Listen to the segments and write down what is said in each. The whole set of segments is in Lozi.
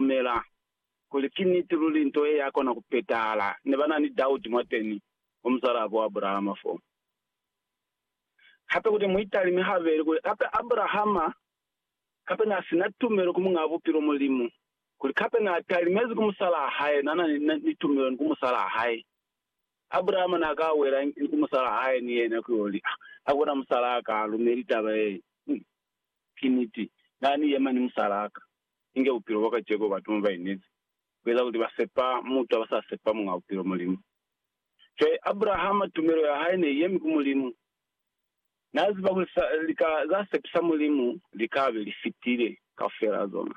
kumela kuli ki niti luli nto ye ya kona ku petahala. Ne ba na ni dauti mwateni mwa muzwalabo Abrahama fo. Hape kuti mu italime habeli kuli, kape Abrahama kape na si na tumelo ku Muñaa Bupilo Mulimu, kuli kape na talimezi ku musalaa hae, na na ni tumelo ni ku musalaa hae. Abrahama na ka wela ni ku musalaa hae ni yena ku yo li, Ha ku na musalaa ka lumeli taba ye. Ki niti, Na ni yema ni musalaa ka, inge bupilo bwa kaceko batu mo ba inezi, ku eza kuli ba sepa mutu ha ba sa sepa Muñ'a Bupilo, Mulimu. Cwale, Abrahama, tumelo ya hae ne i yemi ku Mulimu. Na ziba kuli sa, lika za sepisa Mulimu li ka be li fitile kaufela zona.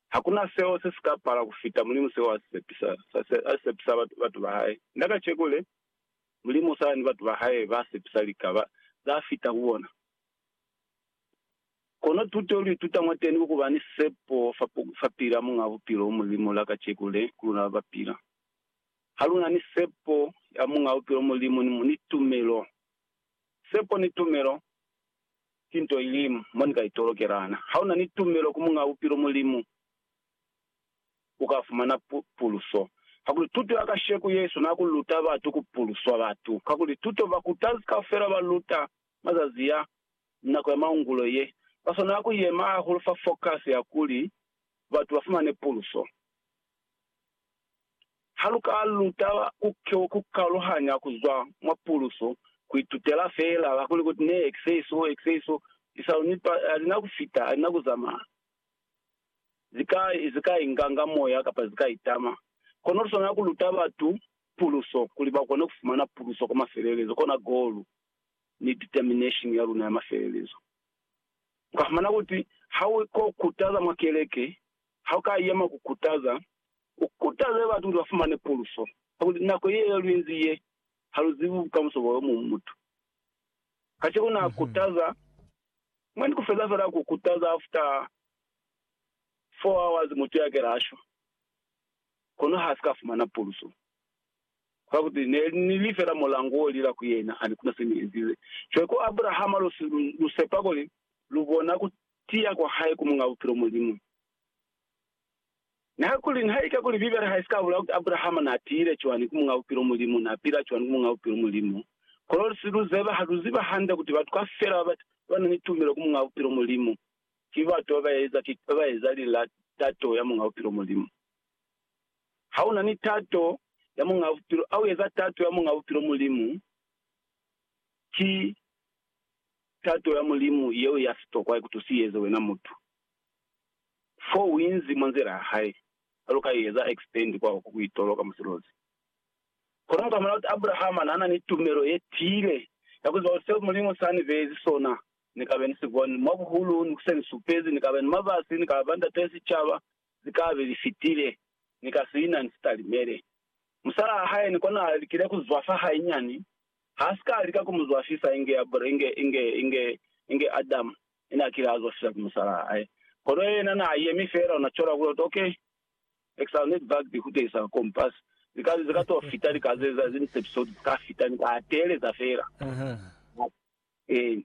Hakuna seo se si ka pala ku fita Mulimu seo a si sepisa, sa, sa, a si sepisa batu, batu ba hae. Na kaceko le, Mulimu u sa ni batu ba hae ba sepisa lika ba, za fita ku bona. Kono tuto lu ituta mwateni ku kuba ni sepo fa pila Muñ'a Bupilo u Mulimu la kaceko le, ku luna ba ba pila. Ha lu na ni sepo ya Muñ'a Bupilo Mulimu ni tumelo, sepo ni tumelo ki nto ilimu mo ni ka itolokelana. Ha u na ni tumelo ku Muñ'a Bupilo Mulimu, u ka fumana puluso. Kakuli tuto ya kasheko, Yesu na ku luta batu ku puluswa batu. Kakuli tuto bakutazi kaufela ba luta mazazi ya nako ya maungulo ye, ba swanela ku yema hahulu fa fokasi ya kuli batu ba fumane puluso. Ha lu ka lu taba ku kaluhanya ku zwa mwa puluso, ku itutela feela ka kuli kuti ne ki se so, ki se so, lisalu ni pa ha li na ku fita, ha li na ku zamaya. Zi ka, zi ka inganga moya kapa zi ka itama. Kono lu swanela ku luta batu puluso kuli ba kone ku fumana puluso kwa mafelelezo, kona golu. ni determination ya luna ya mafelelezo. U ka fumana kuti ha u ko kutaza mwa keleke, ha u ka yema ku kutaza, u kutaze batu kuli ba fumane puluso ya kuli nako ye lu inzi ye, ha lu zibi bukamuso bwa yo muñwi mutu. Kacenu na kutaza, mwa ni ku feza fela ku kutaza after four hours mutu ya kela a shwa, kono ha si ka fumana puluso. Ka kuti ne ni li fela mulango wo lila ku yena ani kuna se ni ezile. Cwale ku Abrahama lu si lu, lu sepa kuli lu bona ku tiya kwa hae ku Muñ'a Bupilo Mulimu. Niha kuli, nihaike kuli Bibele ha i si ka bulala kuti Abrahama n'a tiyile cwani ku Muñ'a Bupilo Mulimu, n'a pila cwani ku Muñ'a Bupilo Mulimu, kono lu si lu zeba, ha lu ziba hande kuti batu kafela ba ba na ni tumelo ku Muñ'a Bupilo Mulimu, ki batu ba ba eza, ki ba ba eza lilatato ya Muñ'a Bupilo Mulimu. Ha u na ni tato ya Muñaa Bupilo, ha u eza tato ya Muñaa Bupilo, Mulimu, ki tato ya Mulimu yeo ya sitokwa i ku tusi u eze wena mutu. Fo u inzi mwa nzila ya Hae, cwalo ka i eza X-band kwa oko ku itoloka musilozi. Kono mu ka bona kuli Abrahama na na ni tumelo ye tiile ya ku ziba kuli seo Mulimu sa ni beezi sona, Ni ka be ni si boni, mwa buhulu, ni ku se ni supezi, ni ka ba ni mabasi, ni ka ba ndatee sicaba, zikabe li fitile, ni ka siina ni sitalimele. Musalaa hae ni kona alikile ku zwafa hainyani, ha si ka lika ku mu zwafisa inge Abele, inge, inge, inge, inge Adamu ne na kile a zwafiswa ki musalaa hae. Kono yena na yemi feela, una cola kuli, Oto, okay, exile ne dibakiti ku tehisa compass. Likazi ze ka to fita, li ka ze za zini sepisodi, zika fita, ni ka teeleza feela. Eeni.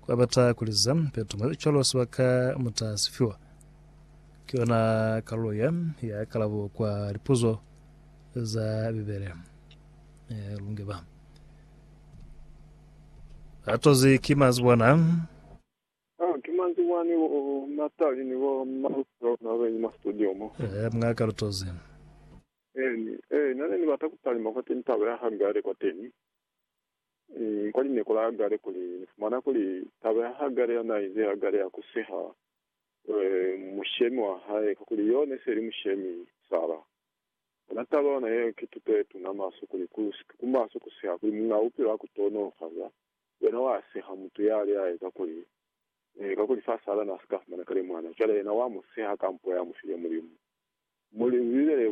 Kwa bata kuliza peto mwa cwalo sibaka muta sifiwa. Ki yona kalulo ya ya kalabo kwa lipuzo za Bibele. E, lunge ba. Atozi ki mazibwana. Ah, ki mazibwana ni bo Natali ni bo Maruso na benyi mwa studio mo. E, mga kalutozi. E, ni, e, nane ni bata kutalima kwateni taba ya hanga yale kwateni. kwa lineku la Hagare kuli, Ni fumana kuli taba ya Hagare ya na ize Hagare ya ku seha mushemi wa hae, kakuli yo ne se li mushemi Sara. Ona taba yona yeo ki tuto ye tuna maswe kuli ku maso ku seha, kuli muñ'a bupilo a ku tonolofaza yena wa seha mutu ya li hae, kakuli, kakuli fa Sara na si ka fumana kale mwana, cwale yena wa mu seha ka mpo ya mu file Mulimu.